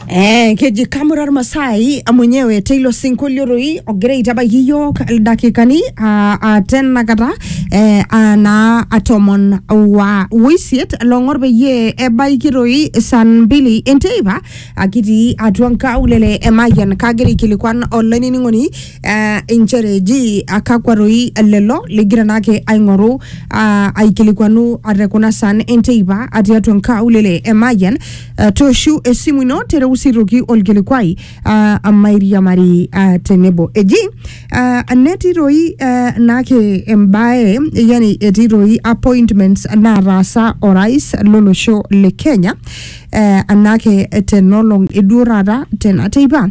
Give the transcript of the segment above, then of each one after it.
Eh, keji kamura ormasai mwenyewe teilo sinkolio doi ogira aitabaiki iyiook ildakikani ah, ah, tenakata eh, ah, naa ah, tomon wa oisiet long'or peyie ebaiki doi saa mbili enteipa akitii atua nkaulele e Mayian kagira aikilikuan olainining'oni eh, inchere ji akakwa roi lelo ligira naake aing'oru ah, aikilikuanu ate kuna san enteipa atii atua nkaulele e Mayian eh, tooshu esimu ino tereu sirruki olkilikuai ah, amairiamari ah, tenebo eji ah, netii roi eh, naake embae yani etii roi appointments naataasa orais lolosho le Kenya eh, anake tenolong eduo taata tena teipa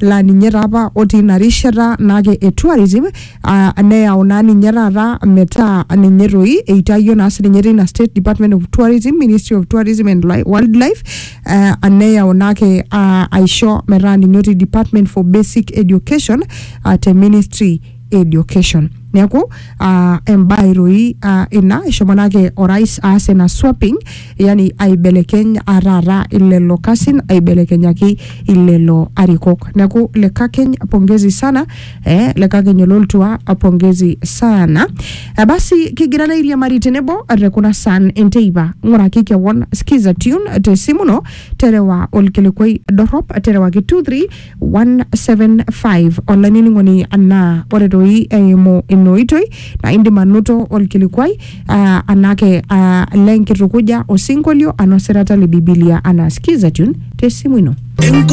laa ninye taa apa otii ina rishata naake e tourism ah, neyau naa ninye taata metaa ninye toi eitayio naa sininye teina state department of tourism ministry of tourism and Li- wildlife eh, neyau naake ah, aisho metaa ninye otii department for basic education ah, te ministry education neeku uh, embae toi uh, ina eshomo nake orais aas ina swapping yani aibelekeny uh, taata ilelo kasin aibelekenyaki ilelo arikok neeku lekakeny pongezi sana eh, lekakeny ololtua pongezi sana uh, basi kigira nairiamari tenebo te kuna san enteipa ng'uraki kewon skiza tune te simu ino terewa olkilikwai dorrop terewaki 23 175 olainining'oni anaa ore toi eimu ina oitoi naa indim anoto olkilikuai ah, anake ah, lenkitukuja osinkolio anaa osirata le bibilia anaa skiza tune tesimu ino Enko